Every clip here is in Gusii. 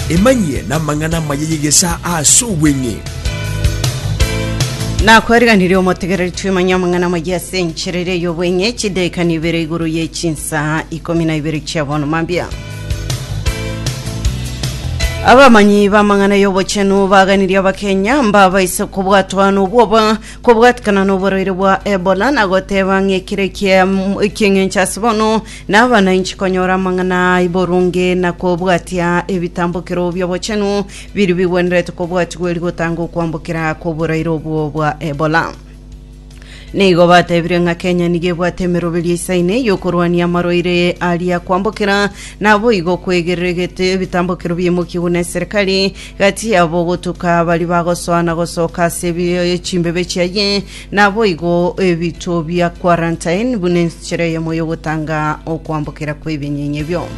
Emanyie namang'ana amaya y'egesaa ase obweng'e. Nakwariganirie omotegereri twimanye amang'ana amaya ase enchera eria y'obweng'e chidaika nibere igoro ye chinsaa ikomi na ibere chia bono mambia. Abamanyi b'amang'ana y'obochenu baganirie Abakenya mbabaise kobwatwa nobwoba kobwatikana noborwaire bwa Ebola na goteba ng'ekire ekieng'encho ase bono Naba nainche konyora amang'ana aa boronge na kobwatia ebitambokero bi'obochenu biria bigwenerete kobwatigwa erio gotanga okwambokera kw'oboraire obwo bwa Ebola. Nigo batebirie ng'a Kenya nigo ebwate emeroberio isaine y'okorwania amarwaire aria kwambokera, naboigo kwegereregete ebitambokero biaimokigwe neserikari gati yabo gotuka baria bagosoa na gosoka ase ebi- chimbebe chiaye Naboigo ebito bia quarantine buna enchera eyemo y'ogotanga okwambokera kw'ebinyinya ebio.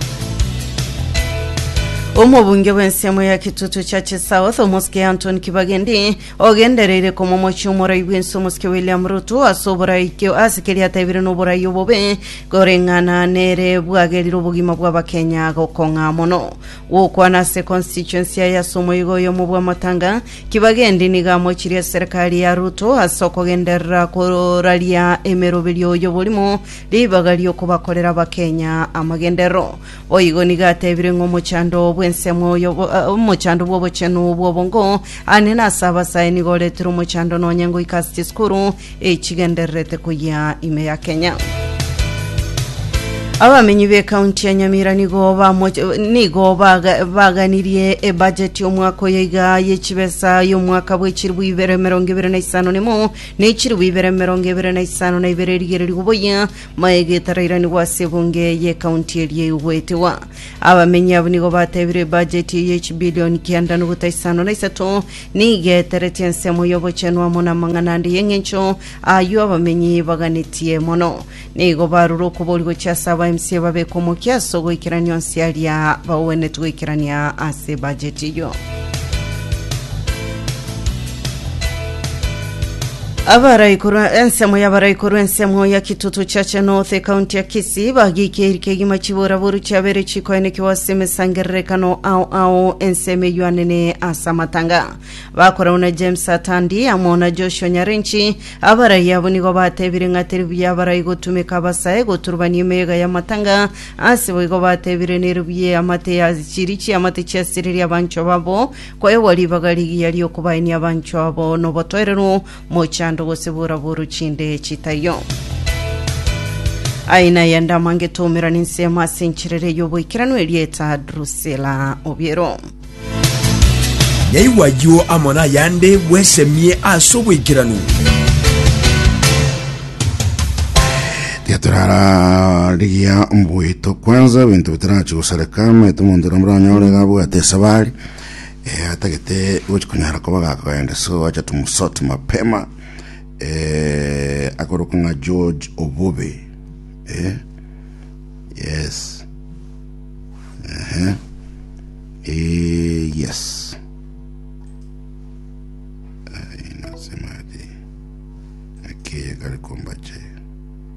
Omobunge bw'ensiamo ya Kitutu Churches South omosike Anton Kibagendi ogendereire komomochia omorai bw'ense omosike William Ruto ase oborai ke- ase keria ataebire noborai obobe koreng'ana nere bwagerire obogima bw'Abakenya gokong'a mono. Gokwana ase constituency yaye ase omoigo oyo mobwamotanga, Kibaki endi nigo amochirie eserekari ya Ruto ase okogenderera koraria emeroberio y'oborimo ribaga ri'okobakorera Abakenya amagenderero. Boigo nigo atebire ng'a omochando bw'ensemo y'obo- eh, omochando bw'obochenu bw'obongo aa nene ase abasae nigo oretire omochando nonye ngoika ase chisukuru echigendererete koyia ime ya Kenya. Abamenyi b'ekaunti ya Nyamira nigo bamoch- nigo baga- baganirie ebajeti y'omwaka oyo iga y'echibesa y'omwaka bw'echiribu ibere emerongo ebere na isano na emo na echiribu ibere emerongo ebere na isano na ibere erigererigwe boyia maya egetarairanigwa ase ebunge y'ekaunti eria egoetegwa abamenyi abwo nigo batebirie ebajeti eye y'echibilioni kianda nogota isano na isato Nigeteretie ensemo y'ogochenu amo namang'ana ande y'engencho, ayio abamenyi baganetie mono. Nigo barure okobori gochia ase abaMCA babeke omokia ase ogoikerania onsi aria bagwenetu goikerania ase bajeti eyio. Abarai korwa ensemo y'abarai korwa ensemo ya Kitutu Church North ekaunti ya Kisii bagiikeiri kegima chibora boru chiabere chikoenekigwa ase emesangererekano ao ao ensemo eyuanene ase amatanga bakoragwa na James Atandi amo na Joshua Nyarenchi abarai abo nigo batebire ng'a teri buya abarai gotumeka abasae goturubania emeyega y'amatanga ase boigo batebire neri buya amate ya chiri chiamate chiasiririe abancho babo Kwaegwa ribaga rigiya ri'okobaenia abanchwa abo nobotoereru, mochando gose boraboro chinde chitaiyo. Aye naye ndama ngetomera ninsemo ase enchera eria y'oboikeranu erieta Drusila Obiero. Nyaigwa ayio amo nayande bwesemie ase oboikeranu. Tiga turara rigiya mbuito kwanza bintu bitarachi gosareka maete omonto na muranyore gabwate esabari e, atagete gochi konyara koba gakogenda so acha tumsote mapema e, akoroka ng'a george obobe e, yes Ehe. e, yes Ai, nasemaje akeye kari kombache